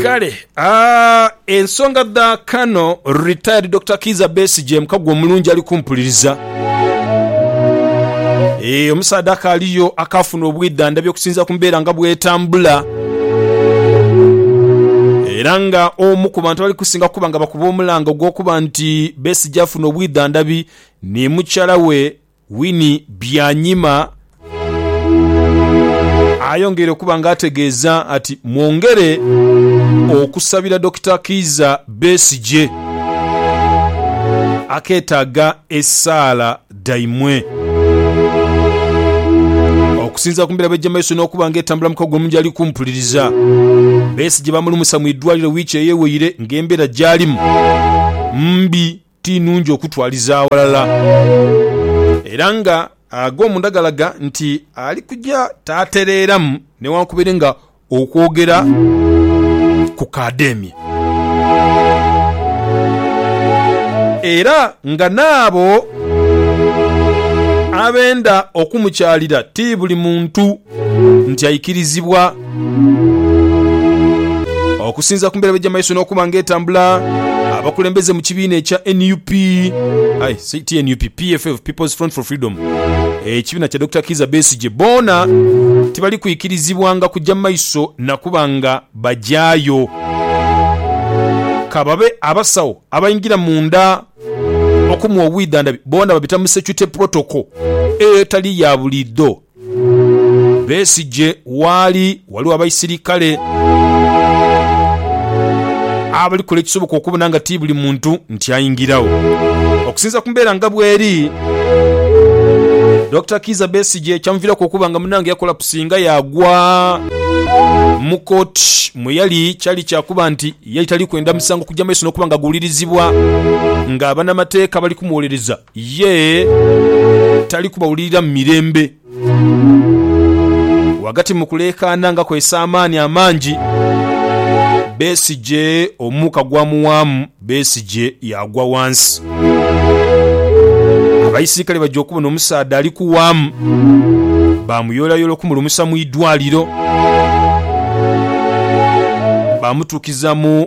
Kale ah, ensonga dha Kano retired Dokita Kiiza Besigye mukago omulungi ali kumpuliriza. Eh, omusaadha akaaliyo akaafuna obwidhandhabi okusinziira ku mbeera nga bw'etambula era nga omu ku bantu abali kusinga okuba nga bakuba omulanga ogw'okuba nti Besigye afuna obwidhandhabi ni mukyala we Winnie Byanyima ayongeire okuba nga ategeeza ati mwongere okusabira Dokita Kiiza Besigye aketaaga esaala dhaimwe. Okusinzira ku mbera bwejja mumaiso n'okuba nga etambula mukago omu gyali kumpuliriza, Besigye bamulumusa mu idwaliro wiiki eyeweire nga embera gyalimu mbi Ti nungi okutwaliza aghalala. Era nga ag'omunda galaga nti ali kuja taatereeramu newankubere nga okwogera kukaademye. Era nga n'abo abenda okumukyalira ti buli muntu. nti aikirizibwa okusinza ku mbeera bwejja mumaiso n'okuba nga etambula abakulembeze mu kibiina ekya nup ai si ti nup pff people's front for freedom ekibiina kya dr kiiza besigye boona tibali kwikirizibwanga kujja mu maiso nakuba nga bagyayo kababe abasawo abaingira munda okumuwa obwidhandhabi boona babita mu security protocol etali ya buliidho. Besigye waali waliwo abaisirikale abali kola ekisoboka okubona nga ti buli muntu nti aingiragho. Okusinzira ku mbeera nga bweri, Dokita Kiiza Besigye kyamuviraku okuba nga munange yakolapusi nga yaagwa mu kooti mwe yali kyali kyakuba nti yali tali kwenda musango kugya maiso n'okuba nga guwulirizibwa nga abanamateeka bali kumuwolereza. Yee, tali kubawulirira mu mirembe. Ghagati mu kuleekaana nga kwesa amaani amangi, Besigye omuuka gwamuwaamu, Besigye yaagwa ghansi. Abaisirikale baja okubona omusaadha ali kuwaamu, baamuyoolayoola okumulumusa mu idwaaliro, baamutuukiza mu.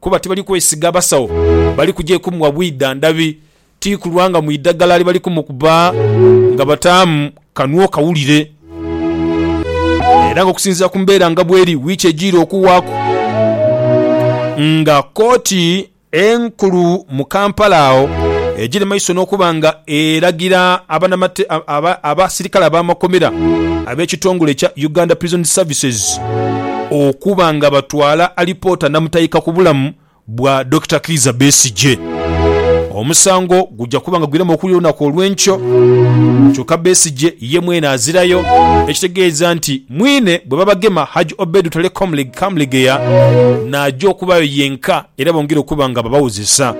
kuba tibali kwesiga basawo bali kugya kumuwa bwidha ndhabi ti kulwa nga mu idhagala libali kumukuba nga bataamu kanhu okawulire. Era nga okusinziira ku mbeera nga bweri, wiiki ejiire okuwaaku nga kkooti enkulu mu Kampala agho egiri maiso n'okuba nga eragira abasirikale ab'amakomera ab'ekitongole ekya Uganda Prisons Services okuba nga batwala alipoota namutayiika ku bulamu bwa Dokita Kiiza Besigye. Omusango gujja kuba nga gwiramu okuwulira olunaku olw'enkyo kyokka Besigye ye mwene azirayo ekitegeeza nti mwine bwe babagema Hajj Obed Lutale Kamulegeya n'aja okubaayo yenka. Era bongera okuba nga babawozesa.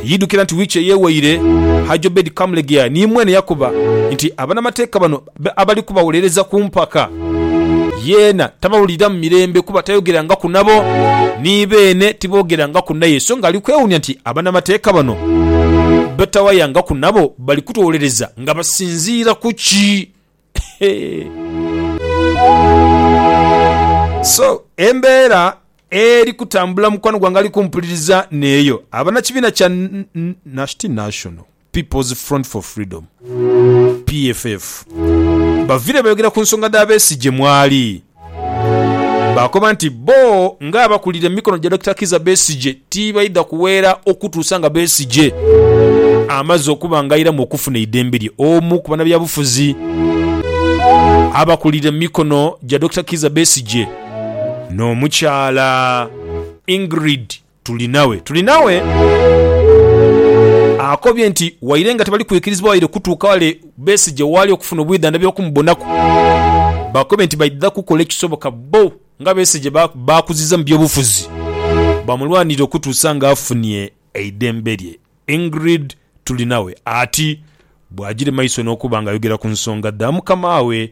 Yidhukira nti wiiki eyewaire Hajj Obed Kamulegeya ni mwene yakoba nti abanamateeka bano abali kubawolereza ku mpaka yeena tabawuliramu mirembe kuba tayogerangaku nabo ni beene tibogerangaku naye so nga ali kwewuunya nti abanamateeka bano betawayangaku nabo bali kutuwolereza nga basinziira ku ki So embeera eri kutambula mukwano gwange ali kumpuliriza n'eyo abanakibiina kya ti National People's Front for Freedom, PFF, bavire bayogera ku nsonga dha Besigye mwali. Baakoba nti bbo nga abakulira emikono gya Dokita Kizza Besigye tibaidha kuweera okutuusa nga Besigye amaze okuba nga airamu okufuna eidembe lye. Omu ku banabyabufuzi abakulira emikono gya Dokita Kizza Besigye n'omukyala Ingrid Tuli nawe, tuli nawe. Akobye nti waire nga tebali kwikirizibwa waire kutuuka wale Besigye waali okufuna obwidhandhabi okumubonaku, bakobye nti baidha kukola ekisoboka bbo nga Besigye baakuziza mu byobufuzi bamulwanirire okutuusa nga afunye eidembe lye. Ingrid Turinawe ati bw'agire maiso n'okuba nga ayogera ku nsonga dha mukamaawe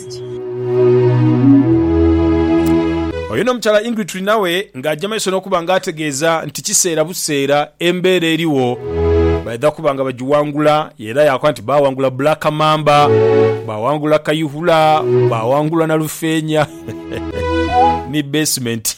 Oyo n'omukyala Ingrid tuli nawe ng'aja maiso n'okuba ng'ategeeza nti kiseera buseera embeera erigho baidha kuba nga bagiwangula era yaakoba nti baawangula Black Mamba, baawangula Kayihura, baawangula Nalufeenya ni Basement.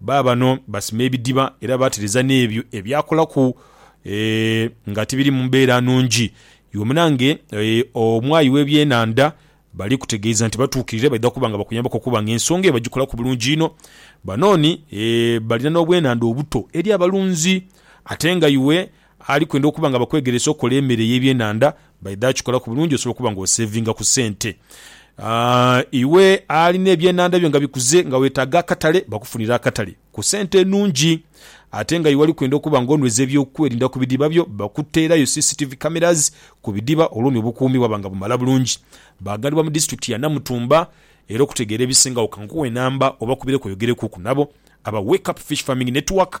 Baabano basima ebidiba era baatereza n'ebyo ebyakolaku nga tibiri mu mbeera nnungi. Iwe munange omwayi w'ebyenhandha bali kutegeeza nti batuukirire baidha kuba nga bakuyambaku okuba nga ensonga eyo bagikolaku bulungi inho. Banooni balina n'obwenhandha obuto eri abalunzi ate nga iwe Ali kwenda okuba nga bakwegeresa okukola emere ey'ebyenhandha, baidha akikolaku bulungi osobola okuba nga osevinga ku sente. Iwe alina ebyenhandha byo nga bikuze nga wetaaga akatale, bakufunire akatale ku sente enungi. Ate nga iwe ali kwenda okuba nga onweza eby'okwerinda ku bidiba byo, bakuteerayo CCTV cameras ku bidiba olwo ni obukuumi bwaba nga bumala bulungi. Baghanibwa mu disitulikiti ya Namutumba era okutegeera ebisingagho kankuwe namba obakubireku oyogerekuku nabo aba Wake Up Fish Farming Network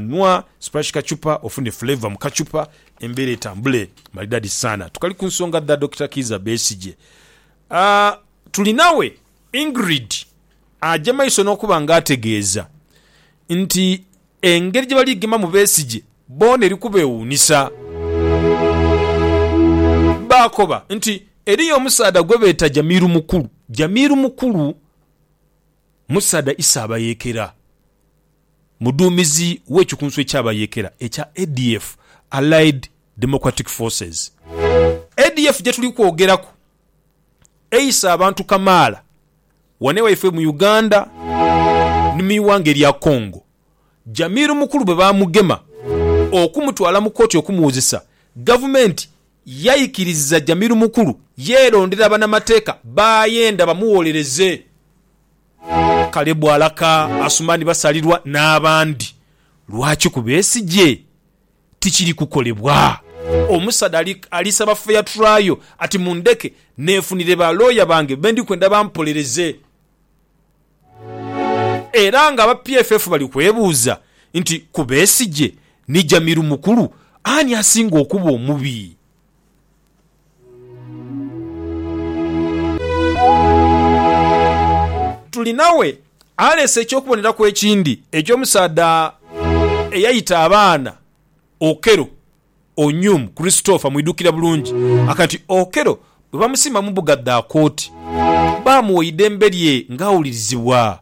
Nwa splash kachupa ofune flavour mu kachupa embeera etambule maridadi sana. Tukali ku nsonga dha Dokita Kiiza Besigye. Tuli nawe Ingrid aja maiso n'okuba nga ategeeza nti engeri gyebali kugemamu Besigye boona eri kubewuunisa. Baakoba nti eriyo omusaadha gwebeeta Jamil Mukulu. Jamil Mukulu musaadha Isabayeekera. Muduumizi w'ekikunsu eky'abayeekera ekya ADF, Allied Democratic Forces. ADF gyetuli kwogeraku eise abantu kamaala ghano ewaifwe mu Uganda ni mu ighanga erya Congo, Jamil Mukulu bwe baamugema okumutwala mu kooti okumuwozesa. Gavumenti yaikiriza Jamil Mukulu yeerondera banamateeka b'ayenda bamugholereze. Kalebu alaka Asumani Basalirwa n'abandi. Lwaki? Kuba esigye tikiri kukolebwa. Omusaadha ali saba fair trial ati mundheke neefunire ba looya bange be ndi kwenda bampolereze. Era nga aba PFF bali kwebuuza nti ku Besigye ni Jamiru Mukulu, ani asinga okuba omubi? Tuli nawe aleese eky'okuboneraku ekindi eky'omusaadha eyaita abaana Okello, Onyum Christopher mwidhukira bulungi. Akaga nti Okello bwe bamusimba mu mbuga dha kooti, baamugha eidembe lye ng'awulirizibwa.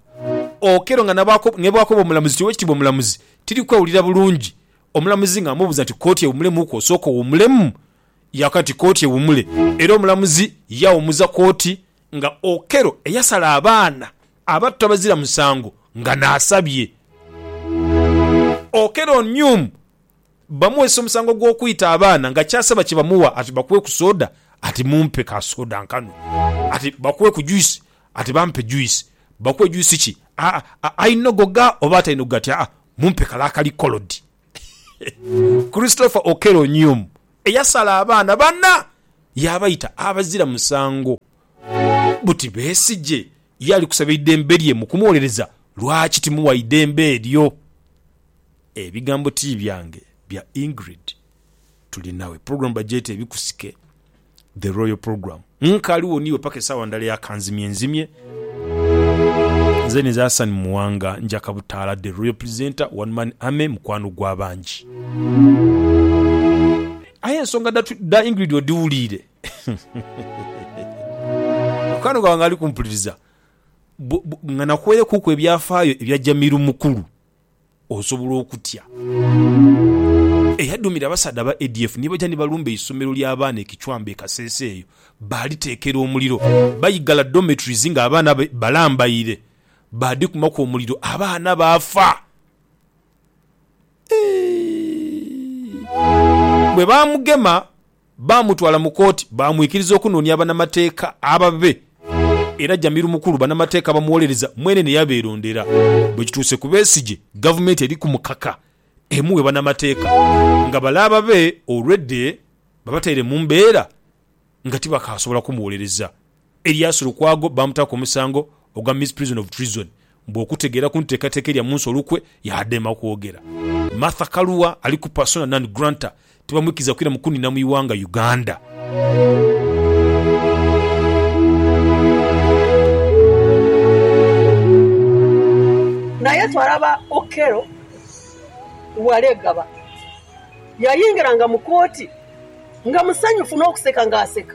Okello nga nebwakoba omulamuzi nti Owekitiibwa Omulamuzi tiri kwewulira bulungi, omulamuzi ng'amubuuza nti Kooti ewumulemuuku osooke owumulemu? ya kati kooti ewumule era omulamuzi yawumuza kooti nga Okello eyasala abaana abato abazira musango nga nasabye Okello Onyum bamuwese omusango gwokwita abaana nga kyasaba kyebamuwa ati bakuwe ku soda ati mumpe ka soda nkanwe ati bakuwe ku juice ati bampe juice bakuwe juice ki ainogoga oba atainogoga ati aa mumpe kale akali coloured. Christopher Okello Onyum eyasala abaana bana yaabaita abazira musango buti Besigye ye ali kusaba eidembe lye mu kumuwolereza lwaki timuwa idembe eryo. Ebigambo ti byange bya Ingrid Turinawe. Program bagyeta Ebikusike. The Royal Program. Nkaali wo niiwe paka esaawa ndala eya kanzimye nzimye. Nze nize Hassan Muwanga njaka butaala The Royal Presenter, One Man Army, mukwano gwa bangi. Aye ensonga dha dha Ingrid odhiwuliire? Mukwano gwange ali kumpuliriza, nga nakuweirekuuku ebyafaayo ebya Jamiru Mukulu. osobola okutya. Eyadhumira abasaadha aba ADF ni baja ni balumba eisomero ly'abaana e Kichwamba e Kasese eyo baaliteekera omuliro. Baigala dormitories ng'abaana balambaire baadhikumaku omuliro abaana baafa. Bwe baamugema. Baamutwala mu kooti baamwikiriza okunoonia abanamateeka ababe era Jamil Mukulu banamateeka bamuwolereza mwene ne yabeerondera. Bwe kituuse ku Besigye, Gavumenti eri ku mukaka emuwe banamateeka nga bale ababe olwedde babataire mu mbeera nga tibakaasobola kumuwolereza. Elias Lukwago baamutaaku omusango ogwa Misprision of Treason mbu okutegeera ku nteekateeka erya munsi olukwe yaadema okwogera. Martha Karua ali ku persona non granta tibamwikiriza kwira mu kuniina mu ighanga Uganda. Naye twalaba Okello Walegaba yayingiranga mu kooti nga musanyufu n'okuseka nga aseka.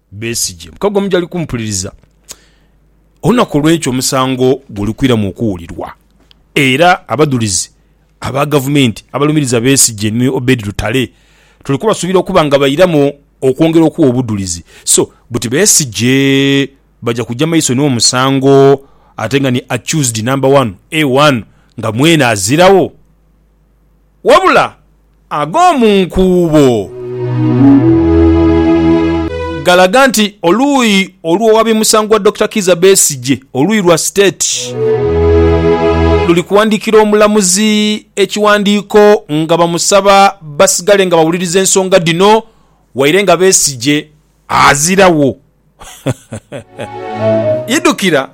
Besigye. Mukago mujali kumpuliriza olunaku olw'enkya omusango gwelukwiramu okuwulirwa era abadhulizi aba gavumenti abalumiriza Besigye ni Obed Lutale tuli kubasuubira okuba nga bairamu okwongera okuwa obudhulizi so buti Besigye baja kuja maiso n'omusango ate nga ni accused number one A1 nga mwene aziragho. Wabula ag'omu nkuubo galaga nti oluuyi olw'owabi musango wa Dokita Kiiza Besigye, oluuyi lwa State, luli kuwandiikira omulamuzi ekiwandiiko nga bamusaba basigale nga bawuliriza ensonga dhino waire nga Besigye azirawo. Idhukira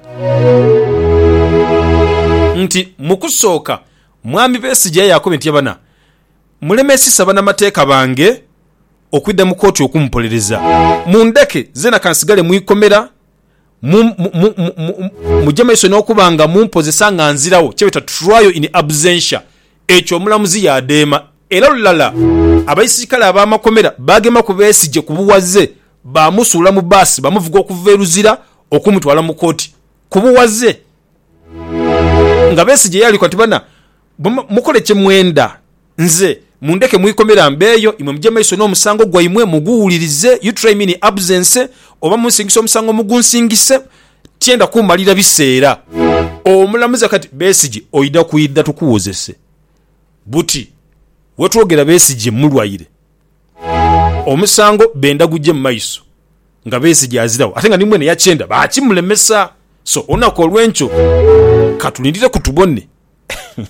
nti mu kusooka Mwami Besigye yaakobye nti abana mulemesisa banamateeka bange okwidha mu kooti okumupolereza. Mundheke zeena kansigale mu ikomera muje maiso n'okuba nga mumpozesa nga nziragho, kyebeeta trial in absentia. Ekyo omulamuzi yaadheema era lulala abaisirikale ab'amakomera baagema ku Besigye ku bughaze baamusuula mu bbaasi baamuvuga okuva e Luzira okumutwala mu kooti. ku bughaze nga Besigye yaliko ati, Bana, mukole kye mwenda nze mundheke mu ikomera mbeeyo, imwe muje maiso n'omusango gwaimwe muguwulirize, you try me in absence, oba munsingise omusango mugunsingise, tyenda kumalira biseera. Omulamuzi akati, Besigye oidha kwidha tukuwozese buti wetwogera Besigye mulwaire? Omusango benda guje mu maiso nga Besigye aziragho ate nga ni mwene yakyenda baakimulemesa. So olunaku olw'enkyo katulindire ku tubone.